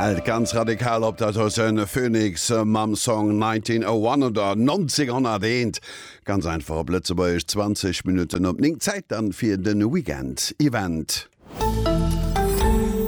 Hält ganz radikal op dat ass en Phoenix mam Song 1901 oder 1901 ganz einfach op Lëtzebuergesch 20 Minutten op 9 Zäit dann fir den Weekend Event.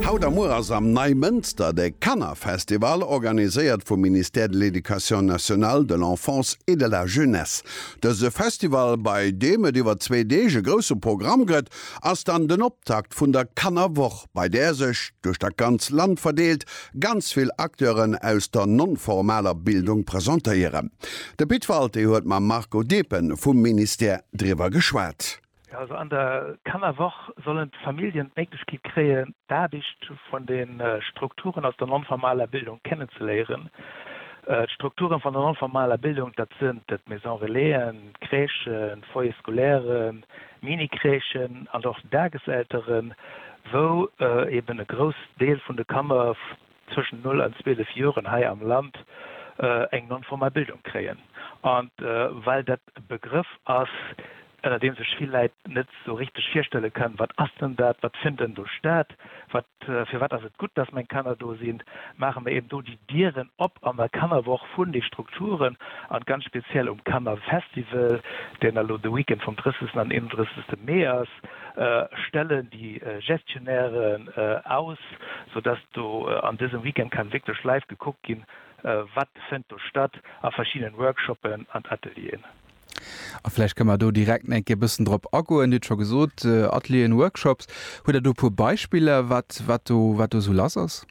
Haut a muer ass am Neimënster de Kannerfestival, organiséiert vum Ministère de l'Éducation nationale, de l'Enfance et de la Jeunesse. Dëse Festival, bei deem et iwwer zwee Deeg e grousse Programm gëtt, ass dann den Optakt vun der Kannerwoch, bei där sech, duerch dat ganz Land verdeelt, ganz vill Acteuren aus der non-formaler Bildung presentéieren. De Pit Walté huet mam Marco Depen vum Ministère driwwer geschwat. Jo, also an der Kannerwoch sollen d'Familljen d'Méiglechkeet kréien, d'Aarbecht vun de Strukturen aus der non-formaler Bildung kennenzeléieren. D'Strukturen vun der non-formaler Bildung, dat sinn d'Maison-relaisen, d'Crèchen, d'Foyers scolaires, Mini-Crèchen an och Dageselteren, wou eben e Groussdeel vun de Kanner zwëschen 0 an 12 Joren hei am Land eng non-formal Bildung kréien. An well dat e Begrëff ass, ënner deem sech vill Läit net sou richteg virstelle kënnen, Wat ass denn dat? Wat fënnt denn do stat? Wat Firwat ass et gutt, dass meng Kanner do sinn? Maache mer eben do déi Dieren op an der Kannerwoch vun de Strukturen an ganz speziell um Kannerfestival, deen elo de Weekend vum 30 an 31 Mee ass, stellen déi Gestionnairen aus, sou dass do an dësem Weekend kann wierklech live gekuckt ginn, wat fënnt do statt a verschiddenen Workshoppen an Atelieren. A vläicht kënne mer do direkt eng Kéier e bëssen drop agoen. Dir hutt scho gesot, Atelieren, Workshops. Hutt Der do e puer Beispiller, wat, wat do, wat do esou lass ass?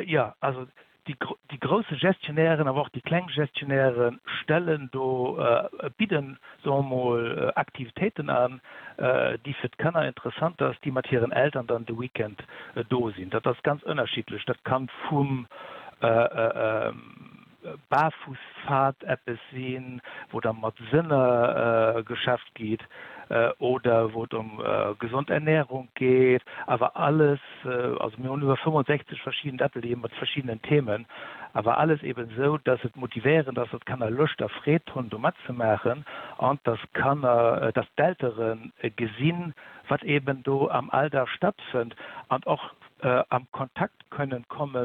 Jo, also déi, déi grousse Gestionnairen, awer och déi kleng Gestionnairen stellen do, bidden, soe mer mol, Aktivitéiten an, déi fir d'Kanner interessant ass, déi mat hiren Eltern dann de Weekend do sinn. Dat ass ganz ënnerschiddlech. Dat kann vum, Barfußpfad eppes sinn, wou da mat Sënner geschafft gitt oder wou et ëm gesond Ernährung geet, awer alles, also mir hunn iwwer 65 verschidden Atelieren mat verschiddenen Themen, awer alles eben esou, dass et motivéierend ass, dass d'Kanner Loscht a Freed hunn do matzemaachen an dass d'Kanner, dass d'Eltere gesinn, wat eben do am Alldag stattfënnt an och, am Kontakt kënnen komme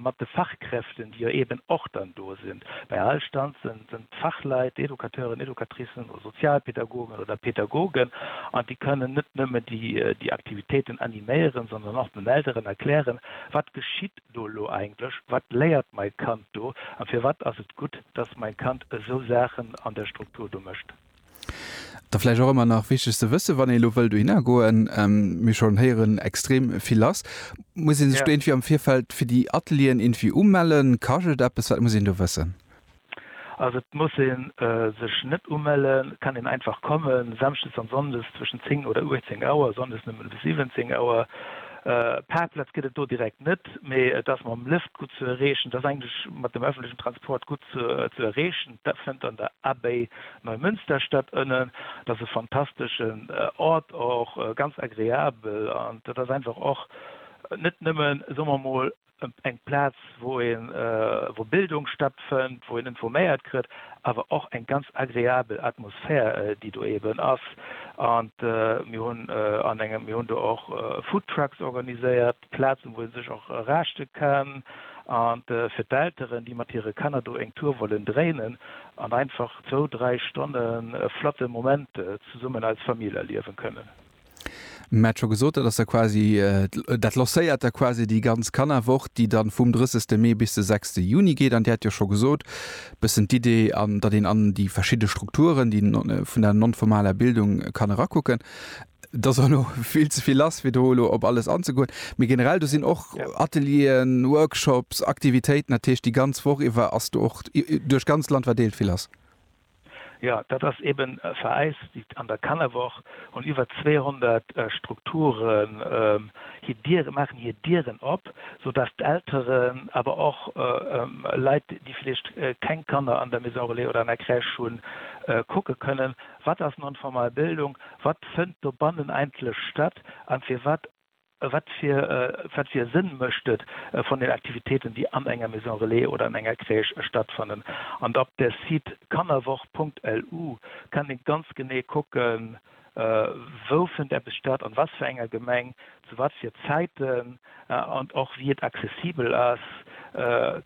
mat de Fachkräften, déi jo eeben och dann do sinn. Bei all Stand sënn d'Fachleit, Educateuren, Educatricen oder Sozialpädagogen oder Pädagogen an déi kënnen net nëmmen déi Aktivitéiten animéieren, sondern och den Elteren erklären, wat geschitt do elo eigentlech, wat léiert mai Kand do a firwat ass et gutt, dass mai Kand esou Saachen an der Struktur do mécht. Da vläicht och ëmmer nach wichteg ze wëssen, wann ee lo wëllt dohinner goen, mir schonn héieren, extrem vill ass, muss ee sech do irgendwie am Virfeld fir déi Atelieren irgendwie umellen? Kascht et eppes? Wat muss een do wëssen? Also et muss ee sech net umellen, et kann een einfach kommen. Samschdes an Sonndes zwëschen 10 oder 18 Auer, Sonndes nëmmen bis 17 Auer. Parkplatz gëtt et do direkt net, mee et ass mam Lëft gutt ze erreechen, et ass eigentlech mat dem öffentlechen Transport gutt ze erreechen. Dat fënnt an der Abbaye Neumünster statt. Ënnen, dat ass e fantasteschen Ort, och ganz agreabel. An dat ass einfach och net nëmmen, soe mer emol, eng Plaz, wou een, wou Bildung stattfënnt, wou een informéiert kritt, awer och eng ganz agreabel Atmosphär, déi do eeben ass. An mir hunn an engem, mir hunn do och Foodtrucks organiséiert. Plazen, wou ee sech och raschte kann, a fir d'Elteren, déi mat hire Kanner do eng Tour wollen dréinen an einfach zwou, dräi Stonne e flotte Moment zesummen als Famill erliewen kënnen. Mir hat scho gesot, dat ass da quasi, dat lancéiert da quasi déi ganz Kannerwoch, déi dann vum 30 Mee bis de 6 Juni geet. An Dir hat jo scho gesot, e bëssen d'Idee, datt een an déi verschidde Strukturen, déi vun der non-formaler Bildung kann erakucken. Et ass elo vill ze vill lass, fir do elo op alles anzegoen. Mee generell, do sinn och Atelieren, Workshops, Aktivitéiten. Dat heescht, déi ganz Woch iwwer ass do och duerch d'ganzt Land verdeelt vill lass. Jo, dat ass eeben vereist. An der Kannerwoch hunn iwwer 200 Strukturen hir Diere, maachen hir Dieren op, soudass d'Elteren, awer och Leit, déi vläicht keng Kanner an der Maison Relais oder an der Crèche hunn, kucke kënnen. Wat ass non-formal Bildung, wat fënnt dobannen eigentlech statt a firwat, wat fir wat fir e Sënn mécht et von den Aktivitéiten, déi an enger Maison Relais oder an enger Crèche stattfannen? An op der Site kannerwoch.lu kann ee ganz genee kucken, wou fënnt eppes statt, an was fir enger Gemeng, Zu wat fir Zäiten an och wéi et accessibel ass,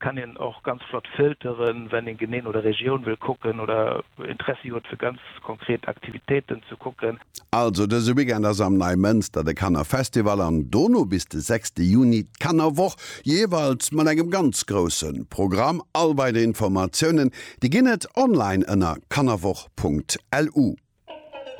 kann een och ganz flott filteren, wann een genee no der Regioun wëll kucken oder Interessi huet fir ganz konkret Aktivitéiten ze kucken. Also dëse Weekend ass am Neimënster de Kannerfestival an dono bis de 6 Juni d'Kannerwoch, jeeweils mat engem ganz grousse Programm. All weider Informatiounen, déi ginn et online ënner kannerwoch.lu.